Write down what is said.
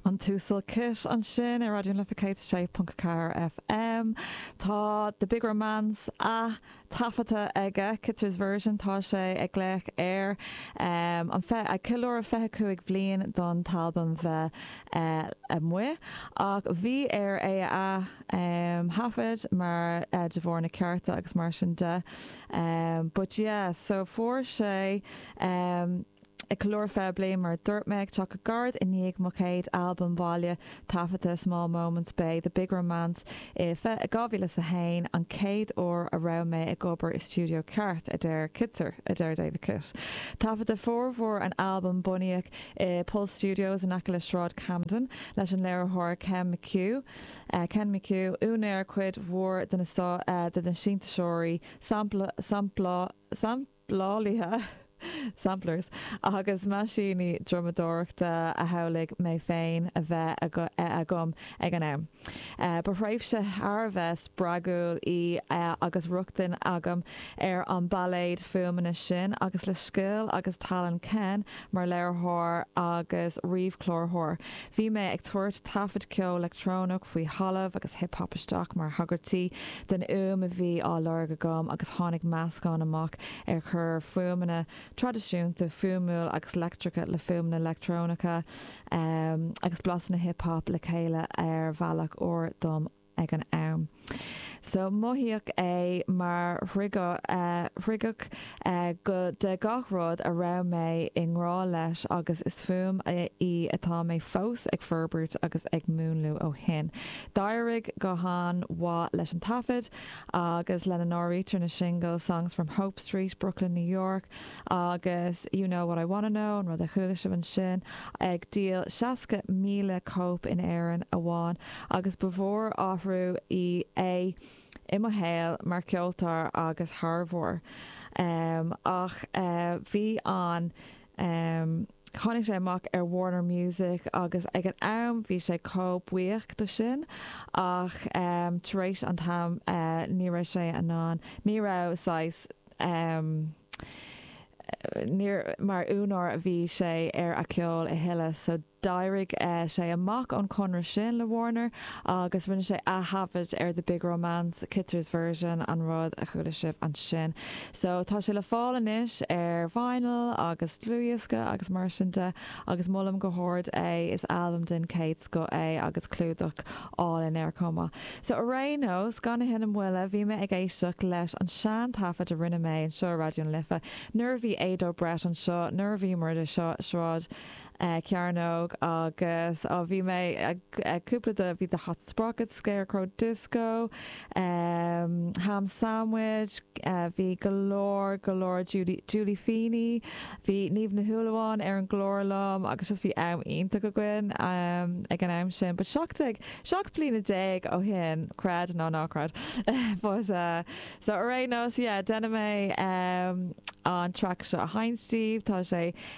An tUasal Kitt ansin ar Raidió na Life 106.4 FM. Tá The Big Romance ath-taifeadta aige, Kittser's Version, tá sé ag glaoch air anois, ag ceiliúradh 25 bhliain don t-albam bheith amuigh, ach bhí air é a ath-thaifead mar de bharr na cearta agus mar sin de but yeah so fuair sé. Ag ceiliúradh 20 bliain mar a dúirt mé ag teacht go gairid i ndiaidh mo chéad albam bhaile taifeadta Small Moments b'é The Big Romance i fiche 2001 an chéad uair a raibh mé ag obair i stiúideo ceart, a deir Kittser. a deir David Kitt. Taifeadadh formhór an albaim bunaidh i Pulse Studios in aice le Sráid Camden leis an léiritheoir Ken McHugh, úinéir cuid mhór de na sintéiseoirí, samp, lálaithe, samplers, agus meaisíní drumadóireachta a shamhlaigh mé féin a bheith agam ag an am. Ba thréimhse thar a bheith spreagúil í agus rochtain agam ar an bpailéad fuaimeanna sin agus le scil agus tallann Ken Mar léiritheoir agus ríomhchláraitheoir, bhí mé ag tabhairt taifead ceol leictreonach faoi thalamh agus hip hop isteach mar thagairtí den fhuaim a bhí á lorg agam agus tháinig meascán amach ar chuir fuaimeanna traidisiúnta fuaimiúil agus leictreacha le fuaimeanna leictreonacha agus blasanna hip hop le chéile ar bhealach úr dom. ag an am. So mothaíodh é mar dhriogadh de gach rud a raibh mé i ngrá leis agus is fuaim í atá mé fós ag forbairt agus ag múnlú ó shin. D'éirigh go han-mhaith leis an taifead agus lena n-áirítear na singil Songs From Hope Street, Brooklyn New York agus You Know What I Wanna Know, an rud a chuala sibh ansin, ag díol 60,000 cóip in Éirinn amháin. agus ba mhór athrú í é i mo shaol mar cheoltóir agus thaibheoir. Ach bhí an, tháinig sé amach ar Warner Music agus ag an am bhí sé chomh buíoch de sin ach tar éis an t-am ní raibh sé in ann, ní raibh saghas, ní mar úinéir a bhí sé ar a ceol a thuilleadh so, D'éirigh sé amach ón chonradh sin le Warner agus rinne sé aththaifead ar The Big Romance, Kittser's Version, an rud a chuala sibh ansin. So, tá sé le fáil anois ar vinyl agus dlúthdhiosca agus mar sin de agus molaim go hard é, is albam den chéad scoth é agus clúdach álainn air chomh maith. So, ar aon nós, gan a thuilleadh moille, bhí mé ag éisteacht leis an sean-taifead a rinne mé anseo i Raidió na Life nuair a bhí Ado Breit anseo, nuair a bhíomar i Sráid Cearnóg agus bhí mé ag cúpla de bhí The Hot Sprockets, Scarecrow Disco, Ham Sandwich, bhí go leor go leor Julie Julie Feeney, bhí Niamh Ní Shúilleabháin ar an gclár liom agus just bhí am iontach againn ag an am sin but seacht déag seacht bliana déag ó shin creid é nó ná creid but so ar aon nós yeah déanfaidh mé an track seo a sheinnt daoibh tá sé